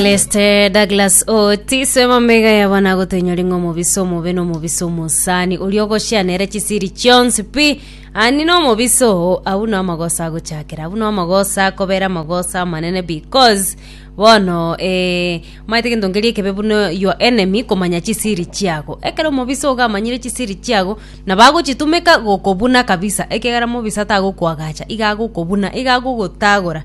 Leste Douglas Otis mamega yaba nagotenyori ng'a omobisa omobe na omobisa omosani oria ogoshia nere chisiri chionsi pi ani na omobisa oo abwo na amagoso agochakera abwo na amagoso akobera amagoso amanene because bono eh, maete gento nkeria ekebe buna your enemy komanya chisiri chiago ekero omobisa ogo amanyire chisiri chiago nabo agochitumeka gokobuna kabisa ekiagera mobisa tagokoagacha iga agokobuna iga agogotagora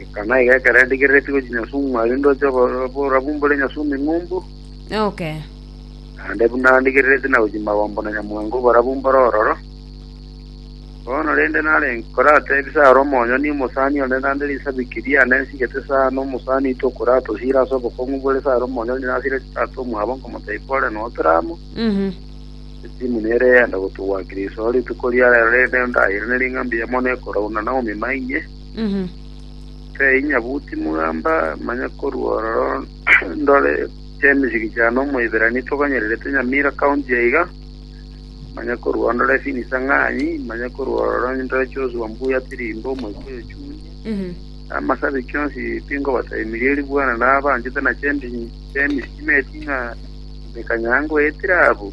Eka naiga ekero endigereretie gochia nyasubwa mwaria ndoche obo- oborabu mbore nyasubwa eng'umbu, Okay. naende buna ndigereretie na gochia magombo na nyamwango oborabu mbore ororo. Bono rende nare nkorateebia ase are omonyene omosani one naende risabiki riane nsigete sana omosani oito okoratosira ase obokong'u bore ase are omonyene nasire chitata omwabo nkomoteebia ore notere amo, Mhm. esimu nere eyende gotogwakira isiko rituko riarero rende ndairane ring'ambi yamo nekoraunana omima inye, Tei nyabuti mogamba, manya korwa ororo ndore chemesegi chia nomoiberania toganyererete Nyamira county aiga, manya korwa ororo ndore Phinis Ang'anyi, manya korwa ororo ndore Joshua Mbuya Tirimbo, Omoikuyu Ochuni, amasabi kionsi pingobataimirie erio bwana nabanchete na chemesegi chiaye ting'a emekanyangwa etire abwo.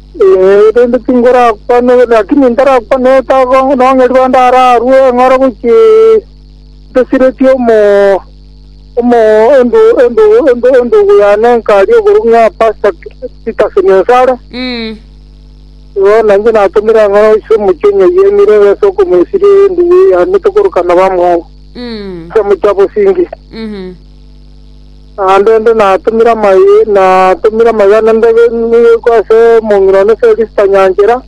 Ee, rende tingorakwane, naki nintarakwane etago nong'eria onde ararue eng'oro gochia ntasireti omo omo endo endo endo endogo yane enkaria igoro ng'a Pasta Titus Nyansara. Igo nainche natomire eng'oro gochia omochie onye yemire ase okomoisiria endugu yane tokorokana bamwabo. Ase omochie abosinge. Naende inde natomire amaiga, natomire amaiga na ndege nigo ase omong'ina one Felista nyanchera,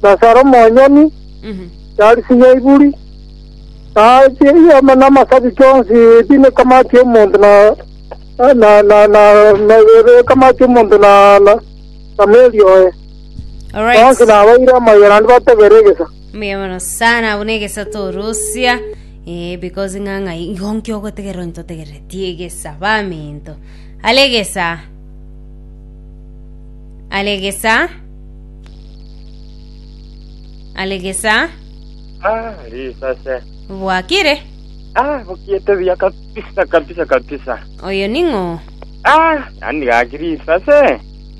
na ase are omonyene, Charisi Nyaiburi, na amasabiti onsi ebi ekamati y'omonto na ekamati y'omonto na meri oye, bonsi nabaire amaiga naende batogere egesa. Mbuya mono sana buna egesato orosia eh, because ng'ang'a igo nkio ogotegerera onye totegereretie egesa baminto ale egesa ale egesa ale egesa Ah, risase. bwakire Ah, bukiete buya kabisa kabisa kabisa. oyo ning'o Ah, nani gaki risase?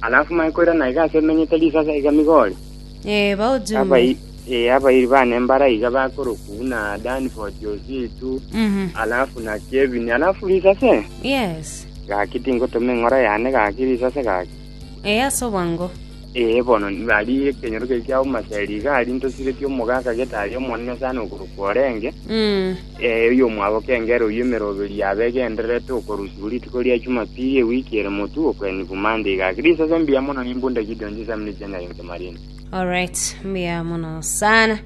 Alafu mae koira na iga ase emenyete risasa iga Migori. Ee, baochumbe. Ee, abairi bane mbara iga bakorokwa buna Dani, Fort Yositu, Mhm. alafu na Kevini. Alafu risase Yes. gaki tingotoma eng'ora yane gaki risase gaki. Ee, ase obwango. Ee, bono bari ekenyoro keria kiauma Seri iga aria ntosiretie omogaka getari Omonene sana okorokwa orenge. Mm. Ee, oyomwabo kengera oyio emeroberio abe egendererete okorusigwa rituko ria Jumapili ewiki ere motwe okw'Eni Bumande iga. Gaki risese mbuya mono nimbunde Gideon chisemi ne chianga inse marine. Alright, mbuya mono sana.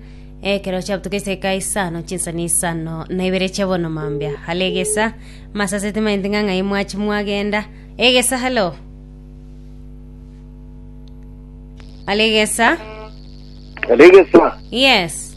Ekero chiabutuka eseka isano chinsa na isano na ibere chia bono mambia. Hale egesa, masase timainti ng'a ng'ai mwachi mwagenda. Egesa halo. Hale egesa. Alegesa, Yes.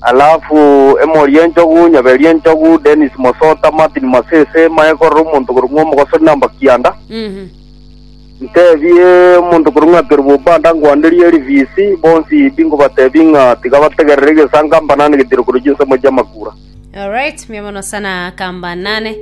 Alafu emori enchogu, nyaberi enchogu, Dennis Mosota, Martin Masese, Mae korora omonto korwa ng'a omogosori na mbakianda. Mhm. Ntebie omonto korwa ng'a Kerubo Banda ngwanderie RVC, bonsi bingobatebi ng'a tiga bategerere egesanka mbanane getiro korwa chinsemo chia makura. Alright, mia mono sana kamba nane.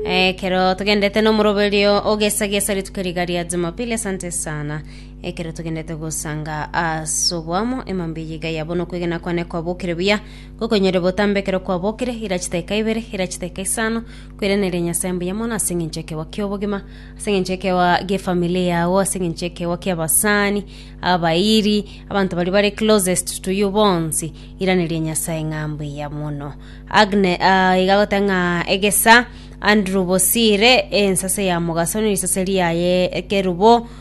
Eh, kero tugendete nomoroberio ogesagesa rituko riga ria Jumapili, asante sana. Ekero togenderete gosanga ase oboamo, emambia eye iga yabo nokwegena kwane kwabokire buya, gokonyore botambe ekero kwabokire, ira chidakika ibere, ira chidakika isano, kwereneria Nyasae mbuya mono ase eng'encho ekeegwa ki'obogima, ase eng'encho ekeegwa gi'efamily yao, ase eng'encho ekeegwa ki'abasani, abairi, abanto baria bare closest to you bonsi, iraneria Nyasae ng'a mbuya mono. Agne ah, iga goteba ng'a egesa Andrew Bosire, ensase ya mogaso ne risase riaye ekerubo,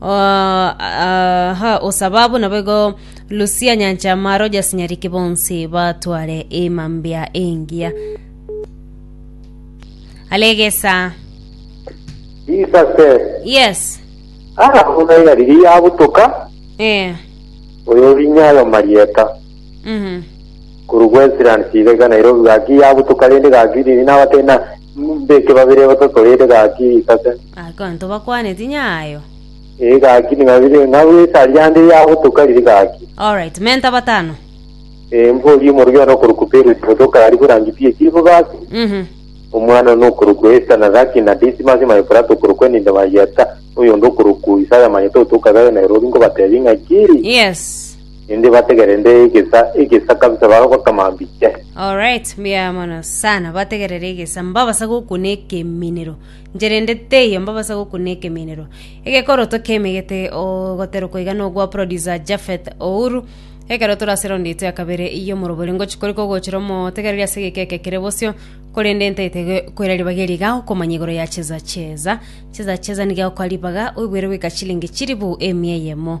Aha osababu naboigo Lucia Nyanchamaaro jasanyariki bonsi batware emambia engiya. Alegesa. Jesus said, Yes. Ara buna yariri yabutoka, Eh. oyo orinya ayo marieta. Mhm. Korwa Westlands iga iga Nairobi gaki yabutoka rende gaki riri nabatari na Mbeke babere aba totoreire gaki isase. Abanto bakwaneti nyayo. Ee gaki ning'abire ng'a gwesa riande yagotoka riri gaki. Alright, menta batano. Ee mbori omorwio one okorokwa Peresi motoka ari borangi pi echibo gaki. Mhm. Omwana one okorokwa Esta na gaki na Disimasi maye Purato okorokwa Enida maye Yeta. Oyonde okorokwa Isaya maye totoka gayo na erobi ngobatebi ng'a kiri. Yes. Inde bategerende egesa egesa kabisa baroba kama mbiche. Alright, mbuya mono sana bategerera egesa mbabasa gokuna ekeminero ncherende teiyo mbabasa gokuna ekeminero egekoroto kemegete ogoterokwa iga nogwa producer Jafeth Ouru ekero torase round yaito ya kabere iyo morobori ngochi kori kogochera omotegereri ase egeka eke kere bosio korende ntaete koira ribaga eri iga okomanya igoro ya cheza cheza cheza cheza niga okwa ribaga oigwere goika chilingi chilifu emia eyemo